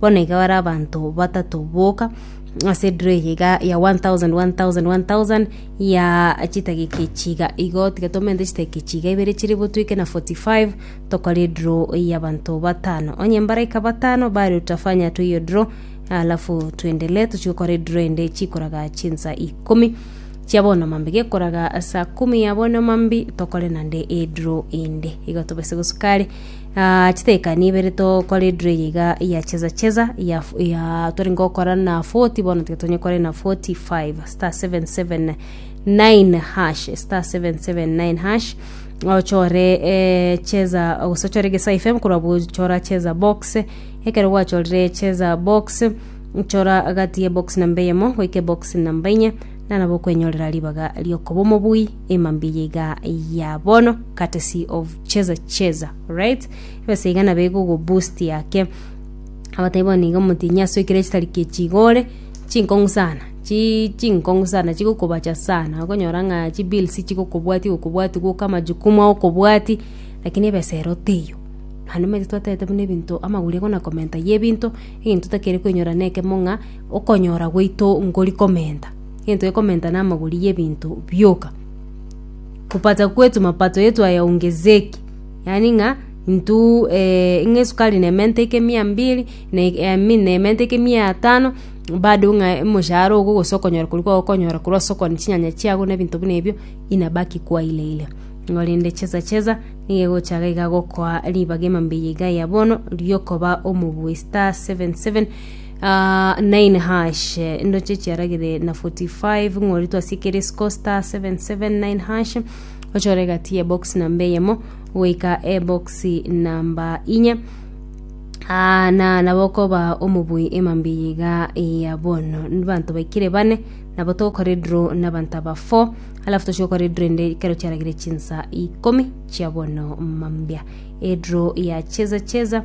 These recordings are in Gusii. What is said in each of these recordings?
Bono iga bare abanto batato boka ase ediro eye iga ya one thousand, one thousand, one thousand, ya chidakika echi iga igo. Tiga tomente chidakika echi iga ibere chire bo twike na forty five, tokore ediro ya abanto batano. Onye mbaraika batano bare utafanya tu hiyo draw, alafu tuendelee tochie gokora ediro ende chikoraga chinsa ikomi chia bono mambi. Gekoraga saa kumi ya bono mambi, tokore naende ediro ende. Igo tobose gosuka are. Aa, chitekani ibere tokore edro eye iga ya cheza cheza ya, f- ya tore ngokora na 40 bono tiga tonyekore na 45 star 779 hash star 779 hash ochore eh, cheza gose ochore gesa fm korwa bochora cheza box ekero gwachorire cheza box chora gati ya box namba eyemo goika box namba enye nana bokwenyorera ribaga riokoba omobui ema mbiya iga ya bono courtesy of cheza cheza right ebesa iga nabo igogo boost yake abataibi bono iga omotinyi ase ekero chitari kechigore chinkong'u sana chi chinkong'u sana chigokobacha sana okonyora ng'a chibills chigokobwati gokobwati gwoka amajukumu agokobwati lakini ebesa ero teiyo naende omanyete twatagete buna ebinto amagori ego na komenta ya ebinto egento otakeri koinyora na ekemo ng'a okonyora gwaito ngori komenta. Gento gekomenta namagori yebinto bioka kupata kwetu mapato yetu ayaongezeke yaani ng'a intu eeh ng'a esukari nemente eke mia mbiri na I mean nemente eke mia etano bado ng'a omoshahara ogo gose okonyora koria kwagokonyora korwa ase okogania chinyanya chiago na ebinto buna ebio inabaki kuwa ile ile. Igo rende chesa chesa nigo egochaka iga gokoa ribaga emambia iga ya bono riokoba omobui star seven seven. Ah, nine hash ndoche chiaragire na 45 ng'ori twasiekere scosta 779 hash ochore gati ye box namba eyemo goika ebox namba inye Ah, na nabo koba omobui emambi yiga ya bono banto baikire bane nabo togokora edro na banto aba 4 alafu tochia gokora edro ende kero chiaragire chinsa ikomi chia bono mambia edro ya cheza cheza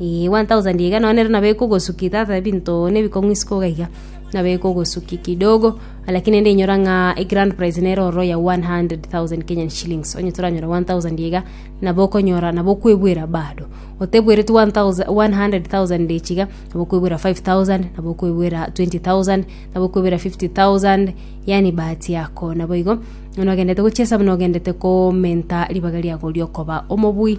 Ee, 1000 iga nonye rero nabo ekogosuki tata ebinto nebikong'isi koga iga nabo ekogosuki kidogo lakini ende inyora ng'a egrand prize nere ororo ya 100000 kenyan shillings onye toranyora 1000 iga nabo okonyora nabo okwebwera bado otebwereti 1000 100000 echiga nabo okwebwera 5000 nabo okwebwera 20000 nabo okwebwera 50000 yaani bahati yako naboigo buna ogendete gochia esabu nogendete komenta ribaga riago riokoba omobui.